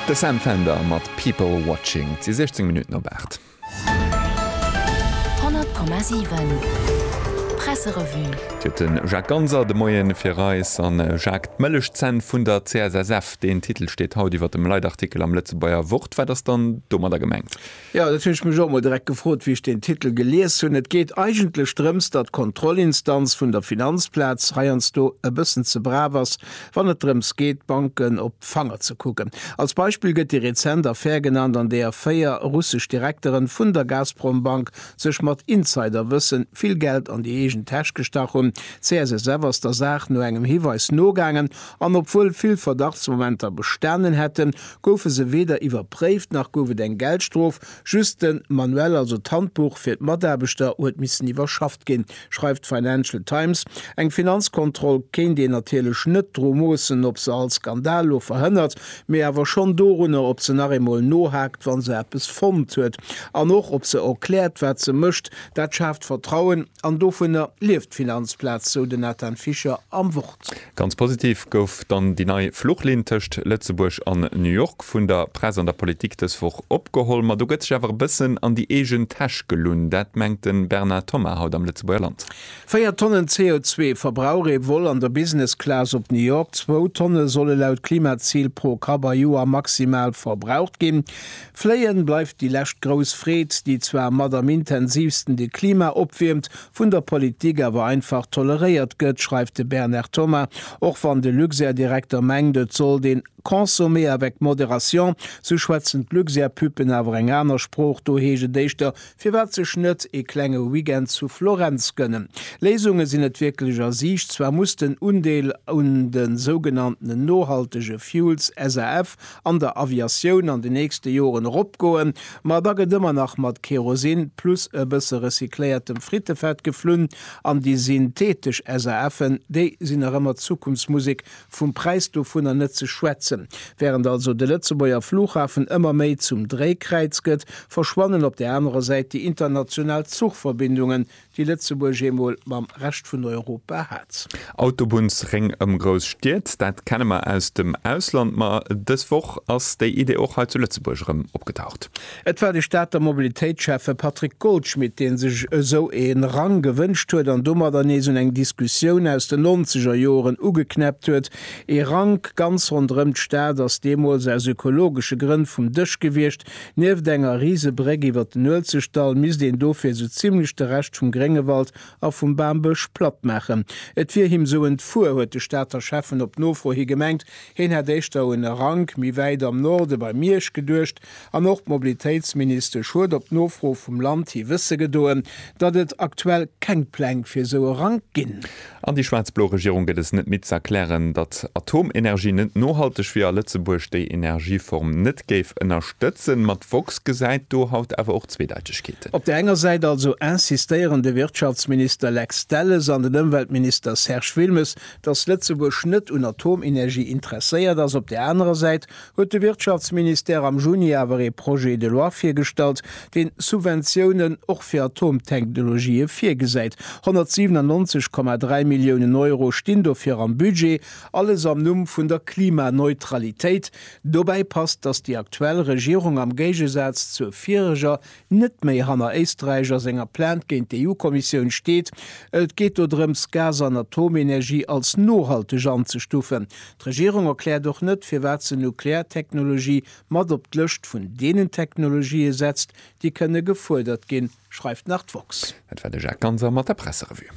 De Sam Fender mat People Watching. Et si 16 Minutten op 8. 100,7 Presserevue. Et huet de Jacques Ganser de Moien fir eis an Jacques d'Mëllechzänn vun der CSSF. Deen Titel steet haut iwwer dem Leitartikel am Lëtzebuerger Wort. Wat ass dann domadder gemengt? Jo, dat hunn ech mech och emol direkt gefrot, wéi ech deen Titel gelies hunn. Et geet eigentlech drëms, datt d'Kontrollinstanz vun der Finanzplaz heiansdo e bëssen ze brav ass, wann et drëms geet, d'Banken op d'Fanger ze kucken. Als Beispill gëtt déi rezent Affär genannt, an deeër véier russesch Direkteren vun der Gazprom-Bank sech mat Insiderwëssen vill Geld an déi eegen Täsch gestach hunn. D'CSSF ass der Saach no engem Hiweis nogaangen, an obwuel vill Verdachtsmomenter bestanen hätten, goufe se weder iwwerpréift nach gouf et eng Geldstrof, just de Manuell, also d'Handbuch fir d'Mataarbechter, huet missen iwwerschafft ginn, schreift d'Financial Times. Eng Finanzkontroll kéint een natierlech net dru moossen, ob se all Skandal lo verhënnert, mee awer schonn dorunner, ob se nach eemol nohaakt, wa se eppes fonnt huet. An och, ob se erkläert, wat se mécht. Dat schaaft Vertrauen. An dovunner lieft d'Finanzplaz, sou den Nathan Fischer am Wort. Ganz positiv gouf dann déi nei Fluchlinn tëscht Lëtzebuerg an New York vun der Press an der Politik dës Woch opgeholl. Ma do gëtt sech awer e bëssen an déi eegen Täsch gelunn. Dat mengt de Bernard Thomas haut am Lëtzebuerger Land. Véier Tonnen CO2 verbrauch ee Vol an der Business Class op New York. Zwou Tonne solle laut Klimazil pro Kapp a Joer maximal verbraucht ginn. Fléien bleift déi lescht grouss Freed, déi zwar mat am intensiivsten de Klima opwiermt, vun der Politik awer einfach toleréiert gëtt, schreift de Bernard Thomas, och wann de Luxair-Direkter mengt, et sollt een consommer avec modération, sou schwätzen d'Luxair-Puppen awer eng aner Sprooch, do heescht et éischter, firwat sech net ee klenge Weekend zu Florenz gënnen? Léisunge sinn net wierklech a Siicht, zwar muss den Undeel un de sougenanntenen nohaltege Fuels, SAF, an der Aviatioun an den nächste Joren eropgoen, ma da gëtt ëmmer nach mat Kerosin plus e bësse recycléiertem Frittefett geflunn an déi synthetesch SAFen, déi sinn nach ëmmer d'Zukunftsmusek, vum Präis dovunner net ze schwätzen. Während also de Lëtzebuerger Flughafen ëmmer méi zum Dréikräiz gëtt, verschwannen op där anerer Säit déi international Zuchverbindungen, déi Lëtzebuerg eemol mam Rescht vun Europa hat. Autobunnsréng ëm grouss Stied, dat kenne mer aus dem Ausland, ma dës Woch ass déi Idee och hei zu Lëtzebuerg erëm opgetaucht. Et war de Stater Mobilitéitsschäffe Patrick Goldschmidt, dee sech esou e Rang gewënscht huet an domadder nees un eng Diskussioun aus den nonzeger Joren ugeknäppt huet. Ee Rank ganz ronderëm d'Stad ass deemools aus ökologesche Grënn vum Dësch gewiescht, Nieft enger Risebréck iwwer den Uelzechtdall misst een dofir esou zimlech de Rescht vum Gréngewald a vum Bambësch platt maachen. Et wier him esou entfuer, huet de Stater Schäffen op Nofro hi gemengt. Heen hätt éischter un e Rank méi wäit am Norde bei Miersch geduecht. An och d'Mobilitéitsministesch huet op Nofro vum Land hi wësse gedoen, datt et aktuell keng Pläng fir esou e Rank ginn. An déi schwaarz-blo Regierung gëtt es net midd z'erklären, datt Atomenergie net nohalteg wier a Lëtzebuerg déi Energieform net géif ënnerstëtzen. Ma d'woxx gesäit do haut awer och Zweedeitechkeeten. Op där enger Säit also insistéieren de Wirtschaftsminister Lex Delles an den Ëmweltminister Serge Wilmes, datt Lëtzebuerg net un Atomenergie interesséiert ass, op där anerer Säit huet de Wirtschaftsministère am Juni awer ee Projet de loi virgestallt, deen Subventiounen och fir Atomtechnologië virgesäit. 197,3 Milliounen Euro stinn dofir am Budget, alles am Numm vun der Klimaneutralitéit. Dobäi passt, datt déi aktuell Regierung am Géigesaz zur vireger net méi hanner Éisträich a senger Plainte géint d'EU-Kommissioun steet. Et geet do drëms, Gas an Atomenergie als nohalteg anzestufen. D'Regierung erkläert och net, firwat se Nukleartechnologie mat op d'Lëscht vun deenen Technologië setzt, déi kënne gefuerdert ginn, schreift nach d'woxx. Dat war de Jacques Ganser mat der Presserevue.